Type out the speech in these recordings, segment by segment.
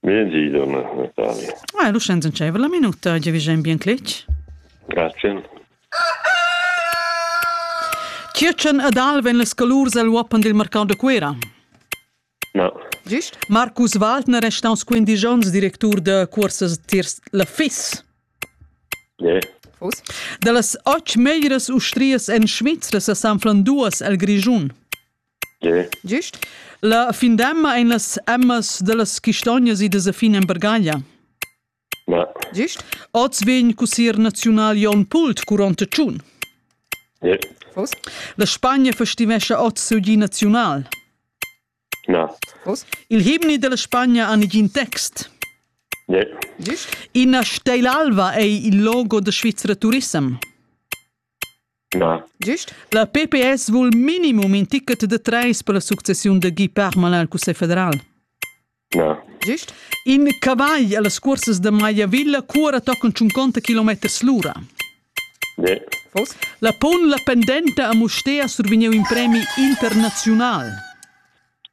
Miedi, donna Natalia. Ah, lu schens entscheiva la minuta, gia vigein bien cletg. Grazie. Tschirtschen ed Alven les colurs el uoppen dil mercau de Cuera. No. Giust? Marcus Waldner è staus quindici onns directur de cursas tiers la FIS. Yeah. Fus. Da las ocht meglieras ustrias en Schweiz se sanflan duas el Grischun. Gist. La findemma ein las emmas dallas chistognas idas a fin en Bergaglia. Ma. Gist. Oz vegn cussier naziunal Jon Pult curont tschun. Yeah. La Spagna festivescha oz siu gi naziunal. Na. Il himni della Spagna ha negin text. Yeah. Ina steilalva ei il logo da Svizzera Turissem. Na. Gist? La pps vul minimum in ticket da trais per la successiun da Guy Parmelin al Cussegl federal. Na. Gist? In cavagl a las cursas da Maiavilla cura tocan tschunconta kilometers l'ura. Ne. Fos? La pon la pendenta a Mustér survegniu in premi internaziunal.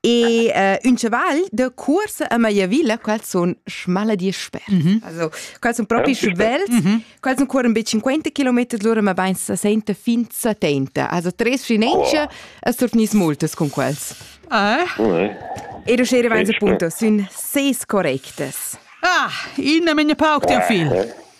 E uh, un chaval de cuorsa a Maiavilla, quels sono smala di sper. Mm -hmm. Also, quels sono proprio svelt, mm -hmm. quels sono ancora un bei 50 km l'ora, ma ben 60 fin 70. Also, tre sfinenze oh. e surnis moltes con quels. Eh? Ero scere vense punto, sono sei correctes. Ah, in a menia pauc ti fil.